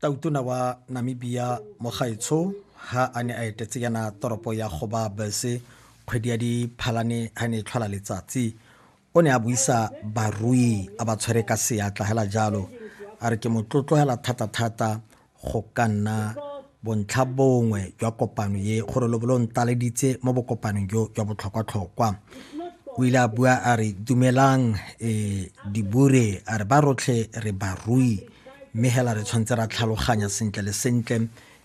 tautona wa namibia mogaetsho ha a ne a etetse yana toropo ya goba bese kgwedi ya diphalane ha ne e tlhola letsatsi o ne a buisa barui a ba tshwere ka seatla hela jalo a re ke motlotlogela thata-thata go ka nna bontlha bongwe jwa kopano ye gore lo bolo ntaleditse mo bokopanong jo jwa botlhokwa-tlhokwa o ile a bua a re dumelang um dibure a re ba rotlhe re barui mme hela re tshwanetse ra tlhaloganya sentle le sentle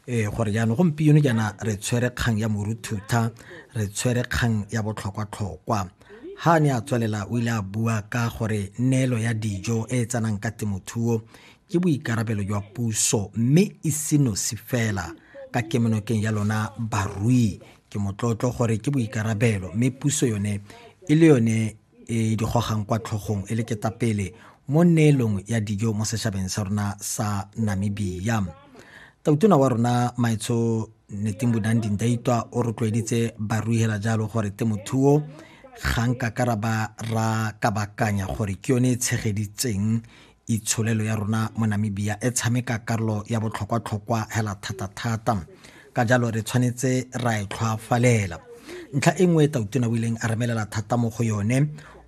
um gore jaanong gompieno jaana re tshwere kgang ya moruthutha re tshwere kgang ya botlhokwatlhokwa ha ne a tswelela o ile a bua ka gore neelo ya dijo e e tsenang ka temothuo ke boikarabelo jwa puso mme e senosi fela ka kemonokeng ya lona barui ke motlotlo gore ke boikarabelo mme puso yone e le yone e di gogang kwa tlhogong e le ketapele mo neelong ya dijo mo setšhabeng sa rona sa namibia tautona wa rona maetsho neteng bonang dindaitwa o rotloeditse barui hela jalo gore temothuo ga nka karaba ra kabakanya gore ke yone e tshegeditseng itsholelo ya rona mo Namibia e tshameka karolo ya botlhokwa-tlhokwa hela thata-thata ka jalo re tshwanetse ra e tlhwafalela ntlha e nngwe e tautona o ileng a remelela thata mo go yone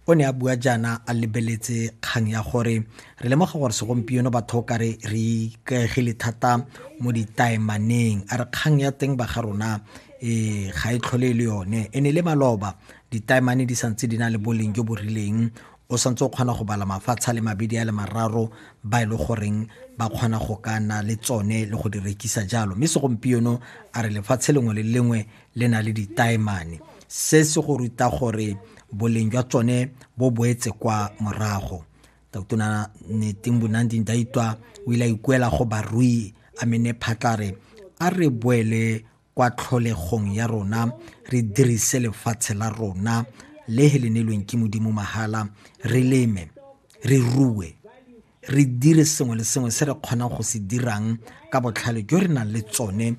o ne a bua jaana a lebeletse kgang ya gore re lemoga gore segompieno batho ka re re ikaegile thata mo ditaemaneng a re kgang ya teng ba ga rona e ga e tlhole e le yone e ne le maloba ditaemane di santse di na le boleng jo bo rileng o santse o kgona go bala mafatshe a le mabedi a le mararo ba e le goreng ba kgona go ka na le tsone le go di rekisa jalo mme segompieno a re lefatshe lengwe le lengwe le na le ditaemane se se go ruta gore boleng jwa tsone bo boetse kwa morago tautona neting bonanding daitwa o ile a ikuela go barui a mene phatlare a re boele kwa tlholegong ya rona re dirise lefatshe la rona le he le neilweng ke modimo mahala re leme re rue re dire sengwe le sengwe se re kgonang go se dirang ka botlhale jo re nang le tsone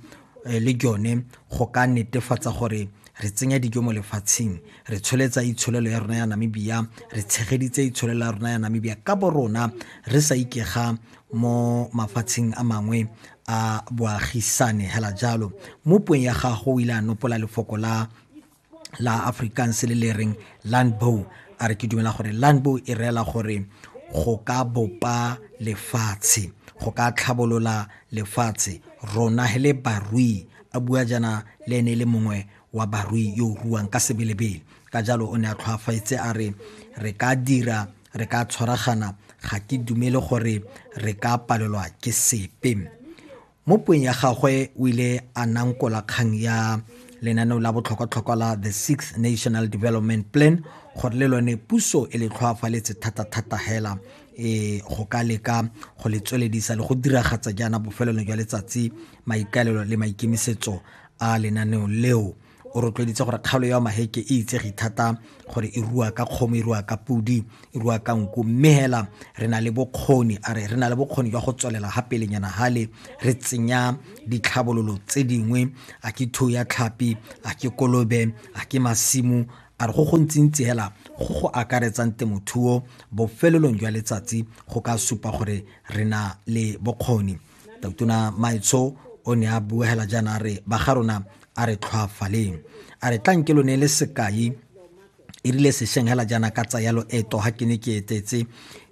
eh, le jone go ka netefatsa gore re tsenya dijo mo lefatsheng re tsholetsa itsholelo ya rona ya namibia re tshegeditse itsholelo ya rona ya namibia ka bo rona re sa ikega mo mafatsheng a mangwe a boagisane hela jalo mo puong ya gago o ile a nopola lefoko la la afrikaans le le reng landbow a re ke dumela gore landbow e reela gore go ka bopa lefatshe go ka tlhabolola lefatshe rona he le barui a bua jana le ene le mongwe wa barui yo o ruang ka sebelebele ka jalo o ne a tlhwafaetse a re re ka dira re ka tshwaragana ga ke dumele gore re ka palelwa ke sepe mo puong ya gagwe o ile a nankola kgang ya lenaneo la botlhokwatlhokwa la the sixth national development plan gore le lone puso e le tlhoafaletse thata-thata hela e go ka leka go le tsweledisa le go diragatsa jaana bofelelo jwa letsatsi maikaelelo le maikemisetso a lenaneo leo o rotloeditse gore kgaolo ya maheke e itsege thata gore e rua ka kgomo e rua ka podi e rua ka nku mme hela re na le bokgoni a re re na le bokgoni jwa go tswelela ga pelenyana hale re tsenya ditlhabololo tse dingwe a ke thuo ya tlhapi a ke kolobe a ke masimo a re go gontsintsi hela go go akaretsang temothuo bofelelong jwa letsatsi go ka supa gore re na le bokgoni Totona Maitsho o ne a buegela jaana a re ba ga rona a re tlhwaafaleng a re tlanke lo ne le sekai e rile sešeng hela jaana ka tsaya loeto ga ke ne ke etetse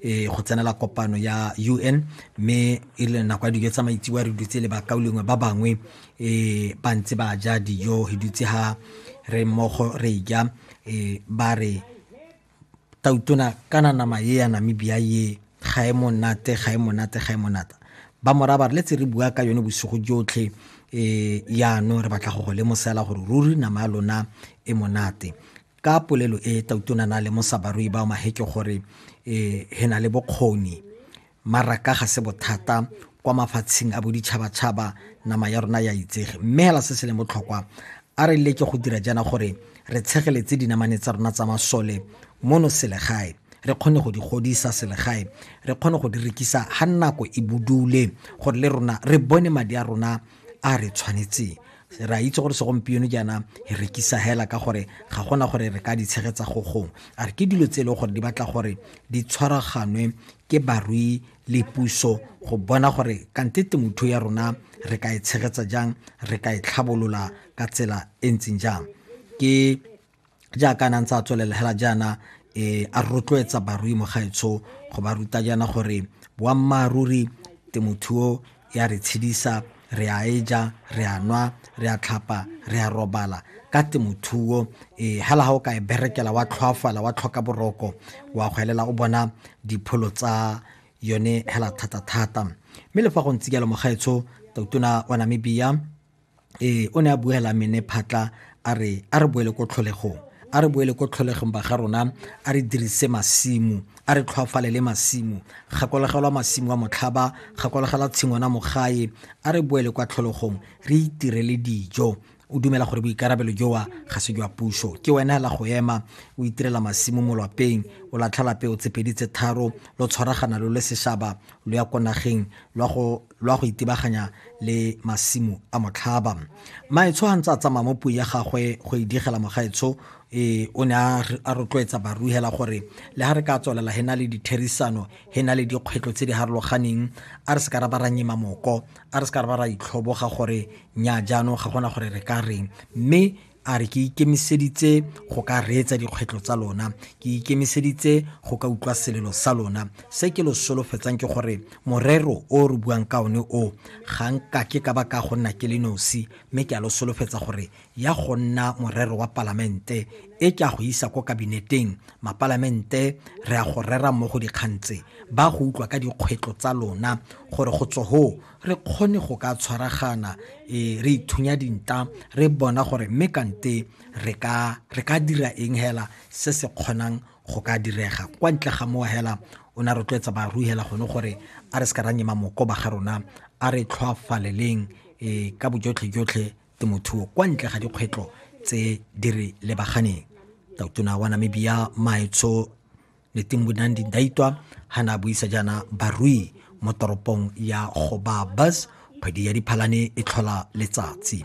um go tsenela kopano ya u n mme e rile nako ya dijo tsa maitsiwa re dutse le bakao lengwe ba bangwe um ba ntse ba ja dijo re dutse ga re mmogo re ja um ba re Tautona kana nama ye ya Namibia ye ga e monate ga e monate ga e monata ba moraba re letse re bua ka yone bosigo jotlhe eh yano re batla go go lemosela gore ruri nama ya lona e monate ka polelo e tautona na lemosa barui ba maheke gore eh he na le bokgoni Maraka ga se bothata kwa mafatsheng a boditšhabatšhaba nama ya rona ya itsege mme hela se se leng botlhokwa a re leke go dira jaana gore re tshegeletse dinamane tsa rona tsa masole mono selegae re kgone go di godisa selegae re kgone go di rekisa ga nako e budule gore le rona re bone madi a rona a re tshwanetseng re a itse gore segompieno jaana e rekisa hela ka gore ga gona gore re ka di tshegetsa go gong a re ke dilo tse e leng gore di batla gore di tshwaraganwe ke barui le puso go bona gore kante temothuo ya rona re ka e tshegetsa jang re ka e tlhabolola ka tsela e ntseng jang ke jaaka a nantse a tswelela hela jaana um a rotloetsa barui mo gaetsho go ba ruta jaana gore boammaaruri temothuo ya re tshedisa re a e ja re a nwa re a tlhapa re a robala ka temothuo um eh, hela ga o ka e berekela wa tlhoafala wa tlhoka boroko wa go elela o bona dipholo tsa yone hela thata-thata mme le fa go ntse jalo mogaetsho tautona wa namibia ee o ne a buela mene phatla a re a re boele ko tlholegong a re boele ko tlholegong ba ga rona a re dirise masimo a re tlhwafalele masimo gakologelwa masimo a motlhaba gakologela tshingwana mogae a re boele kwa tlholegong re itirele dijo o dumela gore boikarabelo jowa ga se jwa puso ke wena hela go ema o itirela masimo mo lwapeng o latlhela peo tsepedi tse tharo lo tshwaragana lo le seshaba lo ya ko nageng lwa go lwa go itebaganya le masimo a motlhaba maetsho a ntse a tsamaya mo puo ya gagwe go e digela mogaetsho e o ne a rotloetsa baruhela gore le ga re ka tswelela he na le ditherisano he na le dikgwetlho tse di harologaneng a re se ka ra ba ra nyema moko a re se ka ra ba ra itlhoboga gore nya jaanong ga gona gore re ka reng mme A re, Ke ikemiseditse go ka reetsa dikgwetlho tsa lona. Ke ikemiseditse go ka utlwa selelo sa lona. Se ke lo solofetsang ke gore morero o re buang ka one o, ga nka ke ka ba ka go nna ke le nosi, mme ke a lo solofetsa gore ya go nna morero wa Palamente, e ke a go isa ko Kabineteng, Mapalamente re a go rera mmogo dikgang tse, ba go utlwa ka dikgwetlho tsa lona, gore go tswa hoo re kgone go ka tshwaragana e re ithunya dinta re bona gore mme kante re ka re ka dira eng hela se se kgonang go ka direga kwa ntle ga mowa hela o ne a rotloetsa baru hela gone gore a re se ka ra nyema moko ba ga rona a re tlhoafaleleng e ka bojotlhe jotlhe temothuo kwa ntle ga dikgwetlho tse di re lebaganeng tautona wa namibia maetsho Letimbunan Daitwa ha na buisa jaana barui mo toropong ya Gobabis kgwedi ya Diphalane e tlhola letsatsi.